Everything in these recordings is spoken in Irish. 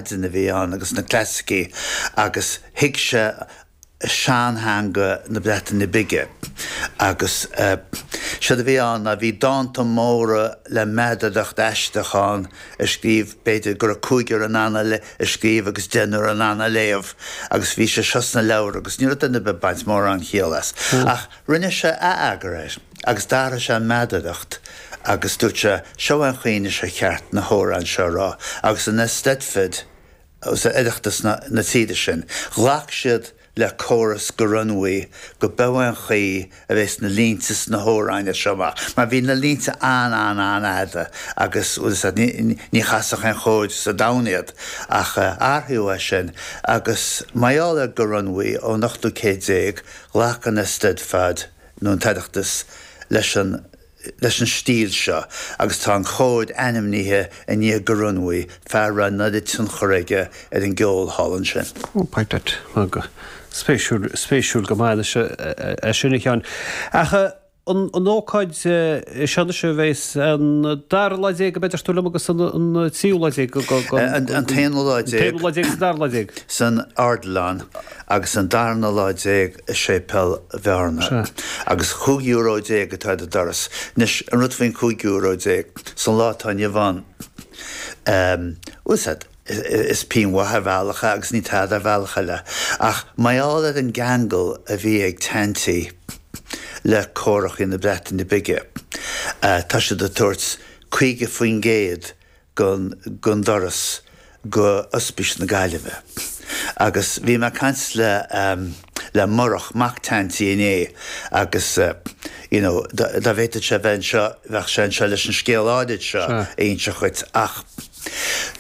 Laidin a bhí ann agus na clasaicí agus thuig sé sean-theanga na Breataine Bige agus séard a bhí ann ná bhí dánta móra le meadaracht aisteach ann a scríobh b'fhéidir go raibh cúigear in ann a scríobh agus deichniúr in ann a léamh agus bhí sé seo sna leabhair agus ní raibh duine ar bith ag baint mórán céill as. Ach rinne sé atheagar air. Agus d'athraigh sé an meadaracht agus dúirt sé, Seo é an chaoi anois is ceart na hamhráin seo a rá, agus an Eisteddfod agus an Oireachtas na tíre sin, ghlac siad le córas Goronwy go mba é an chaoi a bhéas na línte sna hamhráin seo amach, mar bhí na línte an-an-an-fhada agus ní chasfadh aon chór sa domhan iad. Ach athraíodh é sin agus mar gheall ar Goronwy ón ochtú céad déag, ghlac an Eisteddfod, nó an tOireachtas leis an leis an stíl seo agus tá an cór ainmnithe i ndiaidh Goronwy, fear a raibh an oiread tionchair aige ar an gceol thall ansin. Pointless, mar go spéisiúil, spéisiúil go maith anois é sin, a Sheáin. Ach an an ócáid seo anois a bheas an dara lá déag, an b'fhéidir, siúil liom agus an an tríú lá déag go go an an t-aonú lá déag, an t-aonú lá déag agus an dara lá déag. san Ardlann agus an darna lá déag i Séipéal Bhearna. Sea. Agus chúig euro déag atá ar an doras. Anois, an rud faoin chúig euro déag, san lá atá inniu ann, ehm, bhuel, sea, is pingin mhaith ar bhealach é agus ní tada ar bhealach eile. Ach mar gheall ar an gceangal a bhí ag Teaintí le córachaí na Breataine Bige, tá siad ag tabhairt 50% gon doras go Ospís na Gaillimhe agus bhí mé ag caint le Murach Mac Teaintí inné agus you know dá bhféadfadh sé bheith anseo bheadh sé anseo leis an scéal áirid seo a inse dhuit ach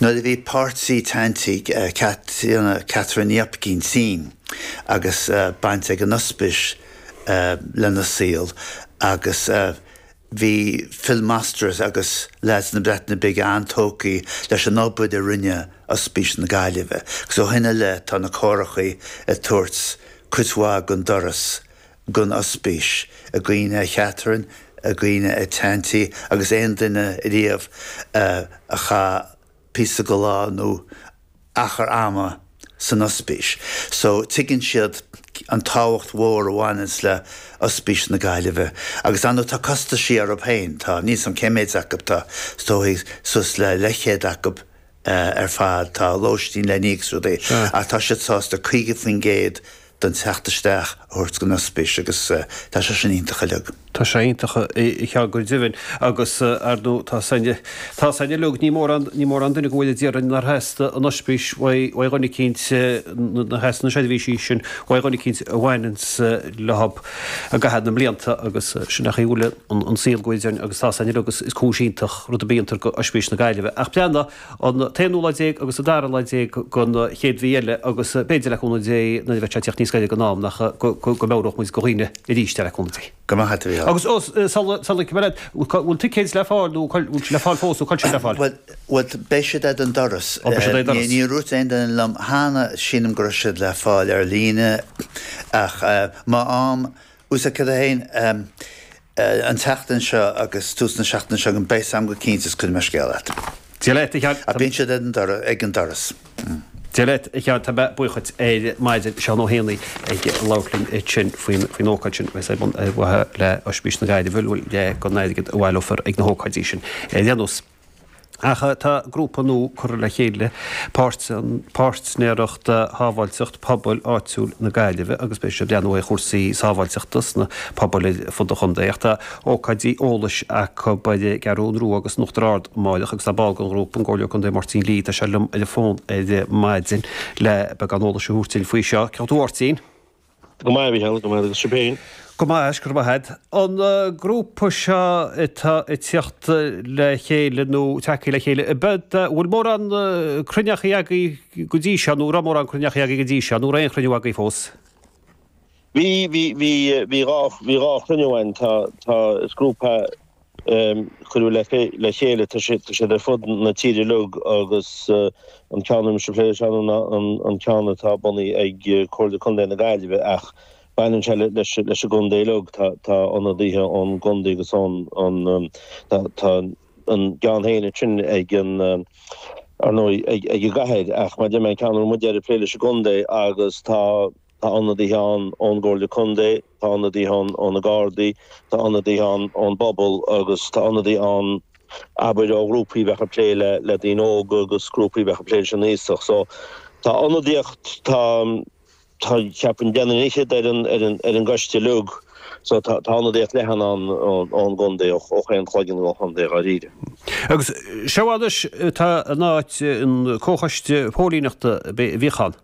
nuair a bhí páirtí Teaintí Catherine Hopkin tinn agus baint ag an Ospís lena saol agus Bhí Phil Masters agus leaids na Breataine Bige an-tógtha leis an obair a rinne Ospís na Gaillimhe agus ó shin i leith tá na córachaí ag tabhairt cuid mhaith gon doras gon Ospís i gcuimhne ar Chatherine, i gcuimhne ar Teaintí agus aon duine riamh a chaith. píosa go lá nó achar ama san Ospís so tuigeann siad an tábhacht mhór a bhaineanns le Ospís na Gaillimhe agus ar ndóigh tá costaisí orthab féin, tá, níl a fhios agam cé méid acu, tá is dóigh suas le leithchéad acu ar fad, tá lóistín le n-íoc agus rudaí ach tá siad sásta 50% don teacht isteach a thabhairt gon ospís agus tá sé sin iontach uilig. Tá sé iontach uilig go deimhin agus ar ndóigh tá a fhios, tá a fhios againn uilig ní mórán ní mórán duine go bhfuil dáiríre nár theastaigh an ospís uaidh uaidh dhuine eicínt nár theastaigh na seirbhísí sin uaidh dhuine eicínt a bhaineanns leothab i gcaitheamh na mblianta agus sin an chaoi a bhfuil an saol go bhfuil dáiríre agus tá a fhios againn uilig is cúis iontach rud ar bith a déantar go Oispís na Gaillimhe ach breathna an t-aonú lá déag agus an dara lá déag den chéad mhí eile, agus b'fhéidir, le cúnamh Dé, nuair a bheidh sé ag teacht níos gaire don am, nach, go, go, go meabhródh muid go dhaoine arís é, le cúnamh Dé. Go mbeadh tú ann. Agus os, sula, sula, cuma leat, bhfuil ticéid le fáil nó cuil, bhfuil siad le fáil fós nó cáil siad le fáil? Bhuel, bhuel, beidh siad ag an doras. Ó, beidh siad ag an doras. Níor úirt aon duine liom cheana, sílim go raibh siad le fáil ar líne ach má, má, Usa 1 An tseachtain seo agus tús na seachtaine seo chugainn, beidh a fhios agam go cinnte is cuirfidh mé scéala agat. Dia leat, a Sheáin. Ach bíonn siad ag an doras. Dia leat, a Sheáin. Tá mé buíoch dhíot ar maidin, Seán Ó hÉanaigh ag labhairt linn ansin faoin ócáid sin agus é ar bun ar mhaithe le Oispís na Gaillimhe, bhuel leath gon airgead a bhaileofar ag na hócáidí sin. Ar aon nós. Ach tá grúpa nua curtha le chéile, Páirtnéireacht Shábháilteacht Pobail Áitiúil na Gaillimhe agus beidh siad ag breathnú ar chúrsaí sábháilteachta sna pobail ar fud an chontae. Ach tá ócáidí eolais acu ar an gCeathrú Rua agus in Uachtar Ard amárach agus tá ball den ghrúpa, an Comhairleoir Contae Máirtín Lee, tá sé liom ar an bhfón ar maidin le beagán eolais a thabhairt dúinn faoi seo. Cén chaoi a bhfuil tú, a Mháirtín. Go maith, a Mhichíl, go maith agus sibh féin? Go maith, is go raibh maith agat. An grúpa seo atá ag tíocht le chéile nó tagthaí le chéile, an bhfuil mórán cruinneachaí agaibh go dtí seo nó an raibh mórán cruinneachaí agaibh go dtí seo nó an raibh aon chruinniú agaibh fós? Bhí, bhí, bhí, bhí dhá, bhí dhá chruinniú againn. Tá, tá, is grúpa. cuireadh le chéile. Tá siad ar fud na tíre uilig agus an ceann a bhfuilimse ag plé leis ann ná an ceann atá bunaithe ag Comhairle Contae na Gaillimhe ach baineann sé leis an gcontae uilig. Tá ionadaithe ón gcontae agus ón Tá a gceann féin ansin ag an ar ndóigh ag an gcathair ach mar a deir mé an ceann a bhfuil muide ag plé leis an gcontae agus tá Tá ionadaithe ann ón gComhairle Contae, tá ionadaithe ann ó na Gardaí, tá ionadaithe ann ón bpobal agus tá ionadaithe ann abair ó ghrúpaí a bheadh ag plé le le daoine óga agus grúpaí a bheadh ag plé leis an aosach. So tá ionadaíocht, tá, tá, cheapfainn deichniúr fhichead ar an, ar an, ar an gcoiste uilig so tá, tá ionadaíocht leathan ann ón, ón gcontae, ó, ó chaon chloigeann gon chontae dháiríre. Agus seo anois atá in áit an comhchoiste póilíneachta a bhíodh ann.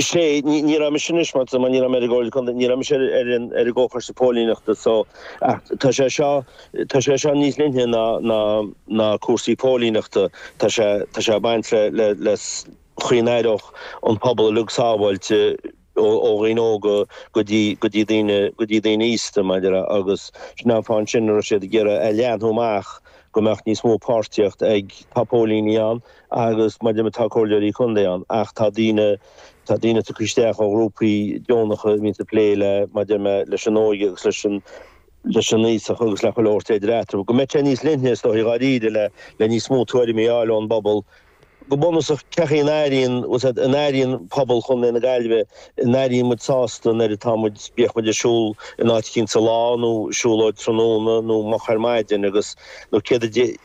Sé, ní raibh mise anois, mar ní raibh mé ar an gComhairle Contae, ní raibh mise ar an gComhchoiste Póilíneachta so, ach tá sé seo, tá sé seo níos leithne ná, ná, ná cúrsaí póilíneachta, tá sé, tá sé ag baint le, le, le chaoi a n-aireodh an pobal uilig sábháilte ó, ó dhaoine óga go dtí, go dtí daoine, go dtí daoine aosta mar a deir mé, agus sin an fáth ansin a raibh siad ag iarraidh a leathnú amach go mbeadh níos mó páirtíocht ag, tá póilíní ann, agus mar a deir mé tá Comhairleoirí Contae ann ach tá daoine tá daoine tugtha isteach ó ghrúpaí deonacha a bhíonns ag plé le mar a deir mé leis an óige agus leis an leis an aosach agus le chuile shórt idir eatarthu. Go mbeidh sé níos leithne is dóigh dháiríre le le níos mó tuairimí a fháil ón bpobal. Go bunúsach cad é an airíonn bhfuil a fhios agat an airíonn pobal Chontae na Gaillmhe an airíonn muid sásta nuair atá muid bíodh muid ag siúl in áit éicint sa lá nó siúlóid tráthnóna nó moch ar maidin agus nó céard a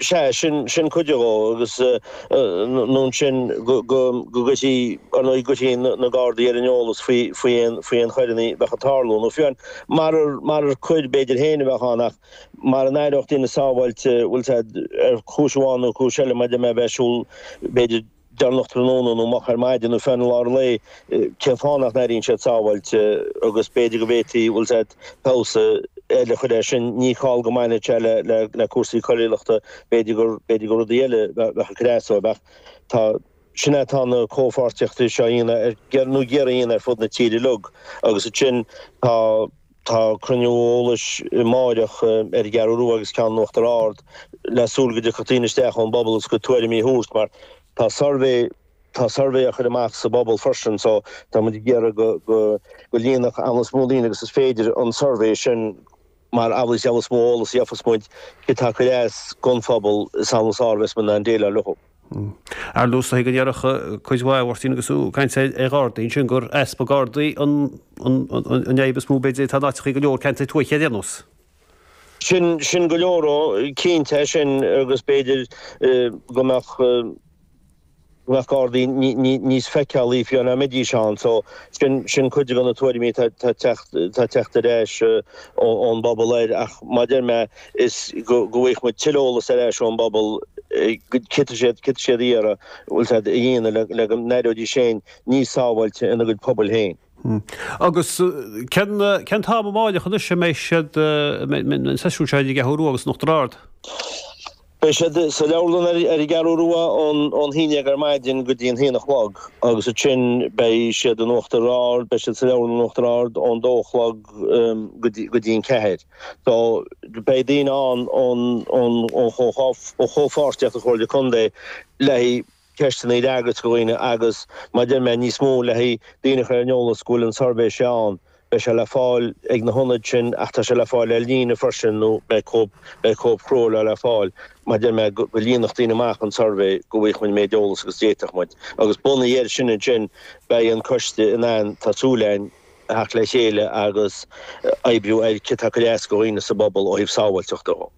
Sea, sin, sin cuid dhó, agus nó ansin go, go, go gcuirfí, ar ndóigh gcuirfí na Gardaí ar an eolas faoi, faoi aon, faoi aon choireanna bheadh ag tarlú, nó fiú amháin, marar, marar coir b'fhéidir féin a bheadh ann ach mara n-aireodh daoine sábháilte, bhfuil a fhios agat, ar chúis amháin nó cúis eile, mar a deir mé a bheith ag siúl b'fhéidir, deireanach tráthnóna nó moch ar maidin nó fiú amháin i lár lae, cén fáth nach n-airíonn siad sábháilte agus b'fhéidir go bhféadfaí, bhfuil a fhios agat, feabhas eile a chur air sin. Ní call go mbaineann sé le le cúrsaí coiriúlachta, b'fhéidir gur b'fhéidir gur rudaí eile bheadh bheadh ag cur as dóibh ach tá sin é tá na comhpháirtíochtaí seo ann ar ndóigh ann ar fud na tíre uilig agus ansin tá Tá cruinniú eolais amáireach ar an gCeathrú Rua agus ceann in Uachtar Ard le súil go dtiocfadh daoine isteach ón bpobal agus a gcuid tuairimí a thabhairt mar tá suirbhé tá suirbhé á chur amach sa bpobal freisin so tá muid ag iarraidh go go go líonfadh an méid is mó daoine agus is féidir an suirbhé sin mar amhlaidh is amhlaidh is mó eolas gheobhas muid céard tá ag cur as don phobal is amhlaidh is fearr bheas muid in ann déileáil leo. Ar dtús, tá go ndéarfadh cuid mhaith a Mháirtín agus tú ag caint ar Ghardaí ansin gur easpa Gardaí an fhadhb is mó b'fhéidir atá in áiteachaí go leor ceantair tuaithe ar aon nós. Sin sin go leor dhó, cinnte é sin agus b'fhéidir go mbeadh go mbeadh Gardaí níos feiceálaí fiú amháin dá mbeidís ann so sin sin cuid de na tuairimí atá ag teacht ag teacht ar ais ón bpobal air ach mar a deir mé is go bhfaighidh muid tuilleadh eolas ar ais ón bpobal céard céard atá siad ag iarraidh bhfuil a fhios agat a dhéanamh le go n-aireoidís féin níos sábháilte ina gcuid pobail féin. Agus cén cén t-am amáireach anois a mbeidh siad an seisiún seo ar an gCeathrú Rua agus in Uachtar Ard? Beidh siad sa leabharlann ar an gCeathrú Rua ón haon déag ar maidin go dtí an haon a chlog agus ansin beidh siad in Uachtar Ard beidh siad sa leabharlann in Uachtar Ard ón dó a chlog go dtí go dtí an ceathair. So, beidh daoine ann ón chomhpháirtíocht, an Chomhairle Contae, le haghaidh ceisteanna a fhreagairt do dhaoine agus, mar a deir mé, níos mó le haghaidh daoine a chur ar an eolas go bhfuil an suirbhé seo ann. Beidh sé le fáil ag na hionaid sin ach tá sé le fáil ar líne freisin nó beidh cóip, beidh cóip chrua leo le fáil, mar a deir mé, go líonfadh daoine amach an suirbhé go bhfaigheadh muid an méid eolas agus d'fhéadfadh muid. Agus bunaithe air sin ansin beidh an coiste in ann, tá súil againn, theacht le chéile agus oibriú ar céard atá chun leas go dhaoine sa bpobal ó thaobh sábháilteachta dhó.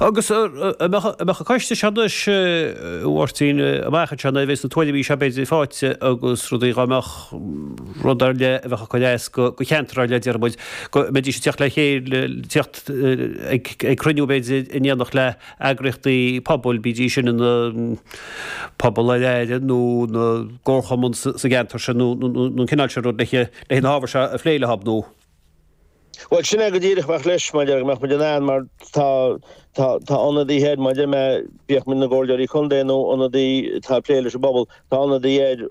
Agus an mbeadh an coiste seo anois, a Mháirtín, amach anseo nuair a bheas na tuairimí seo b'fhéidir faighte agus rudaí dhá mbeadh rud ar leith a bheadh chun leas go cheantar ar leith déarfaidh muid go mbeidís ag tíocht le chéile, tíocht ag cruinniú b'fhéidir in éineacht le. eagraíochtaí pobail, bídís sin ina Pobal ar Aire nó ina gcomharchumann sa gceantar sin nó an cineál sin rud, leis na hábhair seo a phlé leo nó. Bhuel, sin é go díreach a bheadh leis, maidir le go mbeadh muid in ann, mar tá, tá, tá ionadaithe air, maidir le, bíodh muid ina gcomhairleoirí contae nó ionadaí atá ag plé leis an bpobal, tá ionadaí air,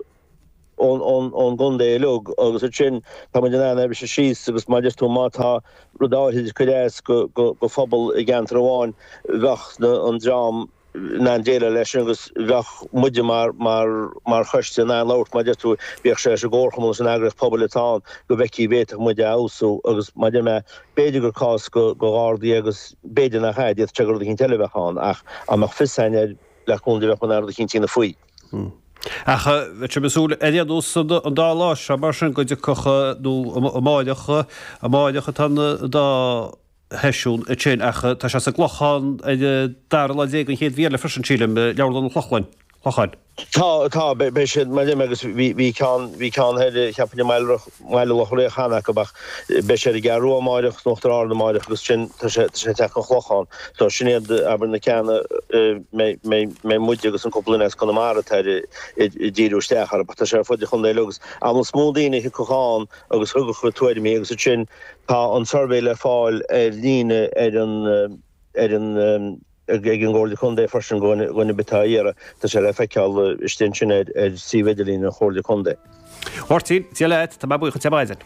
ón gcontae uilig agus ansin tá muid in ann é a bhriseadh síos agus mar a deir tú má tá rud áirithe ag cur as go phobal i gceantar amháin bheadh an dream in ann déileáil leis agus bheadh muide mar choiste in ann labhairt mar a deir tú bíodh sé leis an gComharchumann leis an eagraíocht pobail atá ann go bhfeicfidh bhféadfadh muid a fheabhsú agus mar a deir mé b'fhéidir gur cás go ghardaí agus b'fhéidir nach ea d'fhéadfadh sé gur rud eicínt eile a bheadh ann ach dá mbeadh fios a'inn air le contae bheadh muid in ann rud eicínt a dhéanamh faoi. Ach bheadh sibh ag súil, ar aon nós an dá lá seo mar sin go dtiocfadh, nó amáireach, amáireach atá an dá sheisiún ansin ach tá sé sa gClochán ar an dara lá déag an chéad mhí eile freisin sílim, Leabharlann an Chlochlainn, Chlocháin. Tá, tá, beidh siad mar sin agus bhí, bhí ceann, bhí ceann thoir, cheapainn i mBaile Riach. mBaile Locha Riach ceann acu but beidh siad sa gCeathrú Rua amáireach is in Uachtar Ard amáireach agus ansin tá sé tá sé ag teacht an Chlochán so sin iad abair na ceanna mbeidh mbeidh mbeidh muide agus an cúpla duine as Conamara atá air ag díriú isteach air but tá sé ar fud an chontae uilig agus amhlaidh is mó daoine a thiocfadh ann agus a thabharfadh a tuairimí agus ansin tá an suirbhé le fáil ar líne ar an ar an ag an gComhairle Contae freisin go dhuine ar bith atá á iarraidh, tá sé le feiceáil istigh ansin ar suíomh idirlín an Chomhairle Contae. Máirtín, Dia leat, tá mé buíoch díot ar maidin.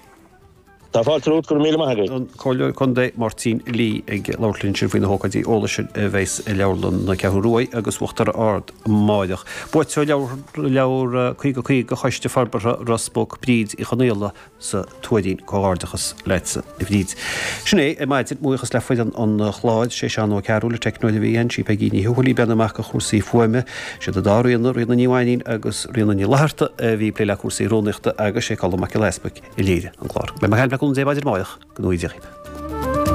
Tá fáilte romhat, go raibh míle maith agat. an Comhairleoir Contae, Máirtín Lee ag labhairt linn ansin faoi na hócáidí eolais sin a bheas i leabharlann na Ceathrún Ruaidh agus Uachtar Ard amáireach. Buaiteoir leabhar 50 50 Choiste Forbartha Ros Muc, Bríd Uí Chonaola, sa Tuairín, Comhghairdeachas leatsa a Bhríd. Sin é ar maidin, mo bhuíochas le foireann an chláir, sé Seán Ó Cearúil, an teicneoir a bhí ann, sí Peigí Ní Thuathail a bhí ag breathnú amach go chúrsaí fuaime, siad an dá Ríona, Ríona Ní Mhainnín agus Ríona Ní Fhlatharta a bhí ag plé le cúrsaí rúnaíochta agus sé Colm Mac Giolla Easbuic a léirigh an clár. Beidh mé ag caint libh le cúnamh Dé maidin amáireach. Go nuige.